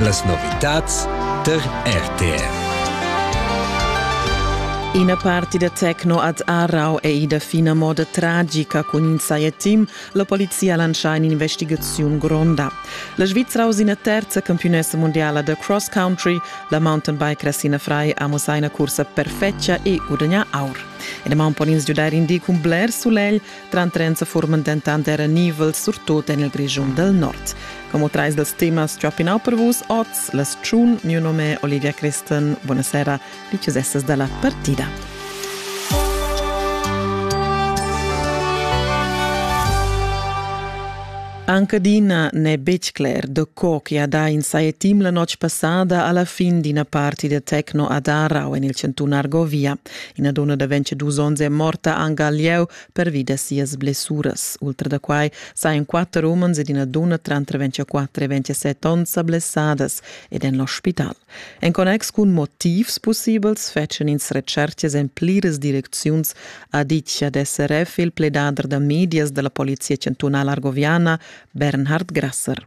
Las novitads tar RTR. Ina parti da techno ad Aarau è ida fina moda tragica cun in saietim. La polizia ha lancià in'investigaziun gronda. La Svizra ha ina terza campionessa mondiala da cross country. La mountain bike Ressina Frei ha mussà ina cursa perfetga e gudagnà aur. E da maun pon ins giudair in di cun bler sulegl, Trantrenza furman dentant era nivels surtut en il Grischun dal Nord. Como trais dals temas tschopinau per vus oz, las tschun, mio nome Olivia Christen, buonasera, diciussesses dalla partida. Anche Dina n'è betg cler da co che ha dà in sai team la notg passada alla fin d'ina partida tecno a Darau en il Cantun Argovia. Ina donna da 22 onns è morta anc al lieu pervi da sias blessuras. Ultra da quai sajan quatter umens ed ina dunna tranter 24 e 27 onns sa blessadas ed en l'ospital. En connex cun motivs pussibels fetschan ins retschertgas en pliras direcziuns, ha ditg ad SRF il pledader da medias da la Polizia chantunala argoviana Bernhard Grasser.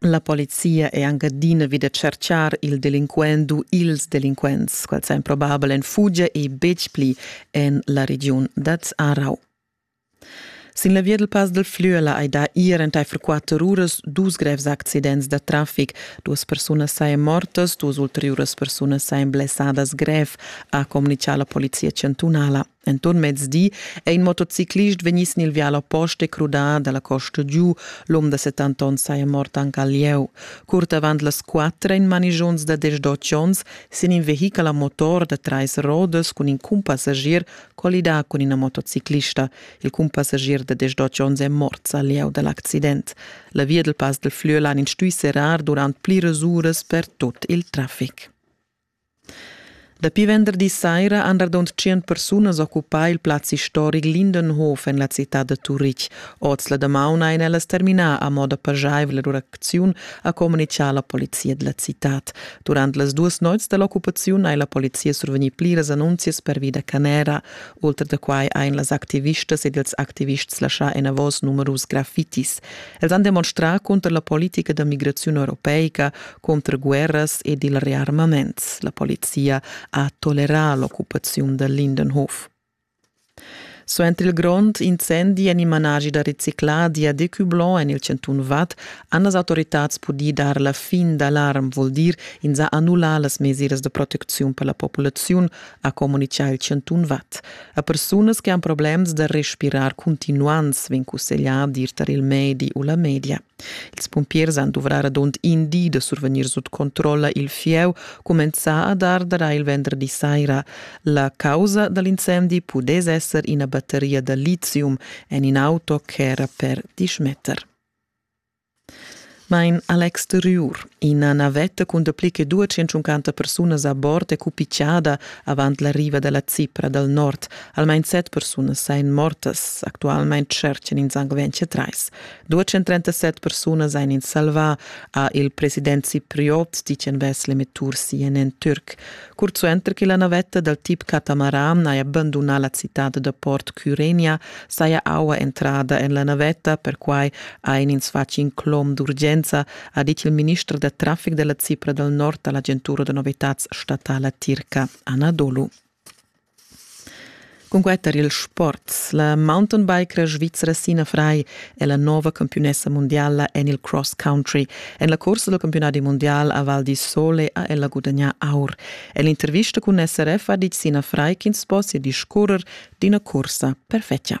La polizia è anc adina vi da tschertgar il delinquent u ils delinquents, quels èn probabel en fugia e betg pli en la regiun dad Arau. Sin la via del Pass del Flüela hai dà ier entaifer quatter uras dus grevs accidents da traffic. Duas persunas sain mortas, duas ulteriuras persunas sain blessadas grev, ha comunicà la polizia chantunala. Enton mezdi è in motociclist vegni sin il vial oppost e crudà dalla costa giu. L'um da 70 onns saja mort anche al lieu. Curt avant las quattro in manigiuns da 18 onns sin in vehichel a motor da trais rodas cun in cumpassagier collidà cun ina motociclista. Il cumpassagier da 18 onns è mort al lieu dall'accident. La via del Pass del Flüelan in stui serrar durant pliras uras per tut il traffic. Dapi venderdi saira han radund tschient persunas occupà il plaz istoric Lindenhof en la citad da Turitg. Oz la damaun ein ellas terminà a moda pajaivla l'uracziun, ha communitgà la polizia della citad. Durant las duas noits dall'occupaziun hai la polizia survegnì pliras annunzias pervi da canera. Ultra da quai ein las activistas ed ils activists laschà enavos numerus graffitis. Els han demonstrà cunter la politica da migraziun europeica, Conter guerras ed il rearmaments la polizia ha tolerà l'occupaziun da Lindenhof. Suenter il grond incendi en il managi da recicladi a Decublanc en il Centun Vad han las autoritads pudì dar la fin d'alarm, vul dir ins ha annullà las mesiras de protecziun per la populaziun, ha communichà il Centun Vad. A persunas che han problems da respirar continuants vegn cusseglià dir tar il medi u la media. Ils pumpiers han duvrà radund in di da survegnir sut controlla il fieu, cumenzà a dar dara il venderdi saira. La causa da l'incendi pudess esser ina batteria da lithium en in auto ch'era per diesch meter. Mein Alex Triur, ina navetta cun dapli che 250 persunas a bord è cupichada avant la riva dalla Cipra dal nord. Almain set persunas ein mortas. Actualmein tscherchan ins anc 23. 237 persunas ein ins salvà, ha il president cipriot Ticenbes Lemetur CNN Türk. Curzuenter che la navetta dal tip catamaran haja abbandunà la citad da port Cyrenia, saja aua entrada en la navetta, perquai ha in ins fatg in clom d'urgenza, ha dit il minister da traffic della Cipra dal nord all'agentura da novitats statala tirca Anadolu. Cunquei tar ils sports. La mountainbikera svizra Sina Frei è la nova campiunessa mundiala en il cross country. En la cursa dal campiunadi mundial a Val di Sole ha ella gudagnà aur. En l'intervista cun SRF ha ditg Sina Frei ch'ins possia discurrer d'ina cursa perfetga.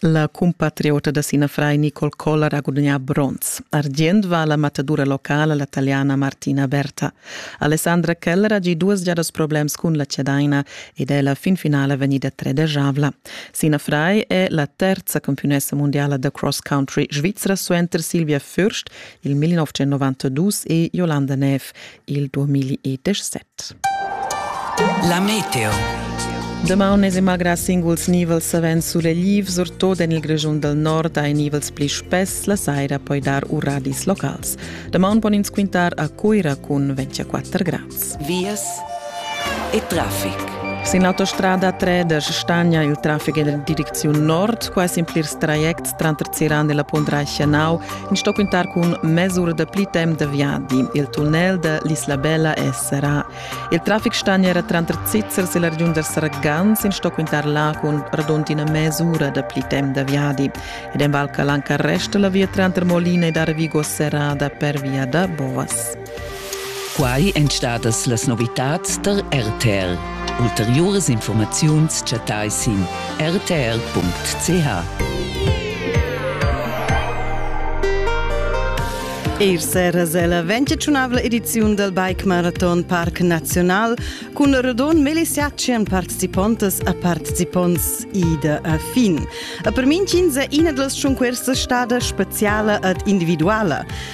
La compatriota da Sina Frai Nicole Koller ha gudagnà bronz. Argient va alla matadura locala la taliana Martina Berta. Alessandra Keller ha gì duas giadas problems cun la cedaina ed è la fin finala vegnida tredegiavla. Sina Frai è la terza campionessa mondiala da cross country svizra suenter Silvia Fürst il 1992 e Jolanda Neff il 2017. La meteo. Damaun es magra singuls nivels savens sulegliv, surtot en il Grischun dal nord ha nivels pli spess, la saira poi dar uradis locals. Damaun pon ins quintar a Cuira cun 24 grads. Vias e traffic. Sin l'autostrada Treders stagna il traffic en la direcziun nord, quasi in plirs trajects Tranter Ziran e la Pondra Schanau in sto quintar cun mesura da pli temp da viadi. Il tunnel da l'Isla Bella è serrà. Il traffic stagn era tranter Zizzers e la regiun da Sargans in sto quintar là cun radondina mesura da pli temp da viadi. Ed en Val Calanca resta la via tranter Molina ed Arvigo serrada per via da Bovas. Quai èn stadas las novitads tar RTR. Ulteriuras informaziuns chattai sin rtr.ch. Eir seras è la 25 ediziun del Bike Marathon Parc Naziunal cun Rodon Melisiacien participontas a participonts ida a fin. A per min ina dals schunquers stada speziala ed individuala.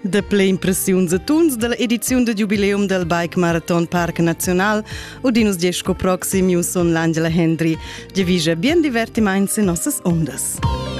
Dapli impressiuns e tuns dalla ediziun da giubileum del Bike Marathon Parc Naziunal udin nus gest sco proxim News on l'Angela Hendry. Divise bien divertimaints in nossas ondas.